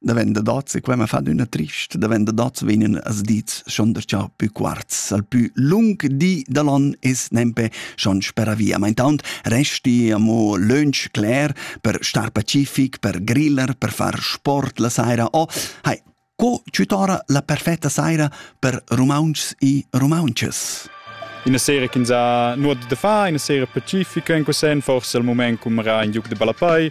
Davenda dazze, qua mi fa d'una trist, davenda dazze vegnan as dits schon der cha pü quarz, al pü lung di da l'on es nempe schon spera via. Ma intaunt resti amo lönch cler per star pacific, per griller, per far sport la saira o, hai, co tutora la perfetta saira per rumauntschs e rumaunches? Ina sera ch'ins ha nuot da far, ina sera pacifica in quel sen, forse al mument cum era in giug de ballapei,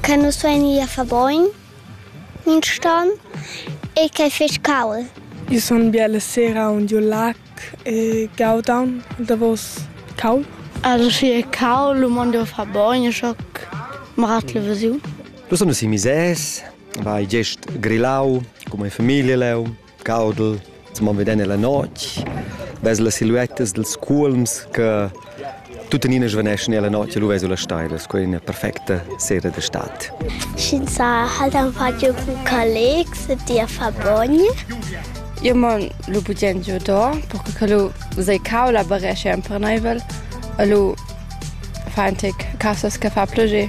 che nus vein ì a far bogn mintgton e ch'ei fetg cauld. Io sun bia la sera aunc giu lac e gaudan il davos caul. Also viel caul, lu mon jeu far bogn, e schoc mratl vesiu. Lu sun nus i mises, vai gest grillau, cun mia famiglia leu. caudel, mo veden nella notte, vezi le silhuettas dels culms che tuttenina svaneschan nella notte, lu vezi la stailas, quella è una perfetta sera d'estate. Schinsa halt einfach giu collegs e dir fa bogn. Io mon lu bugen giu do, perché che lu sei cau la barescia imperneivel, e lu fa un tic casas che fa plogé.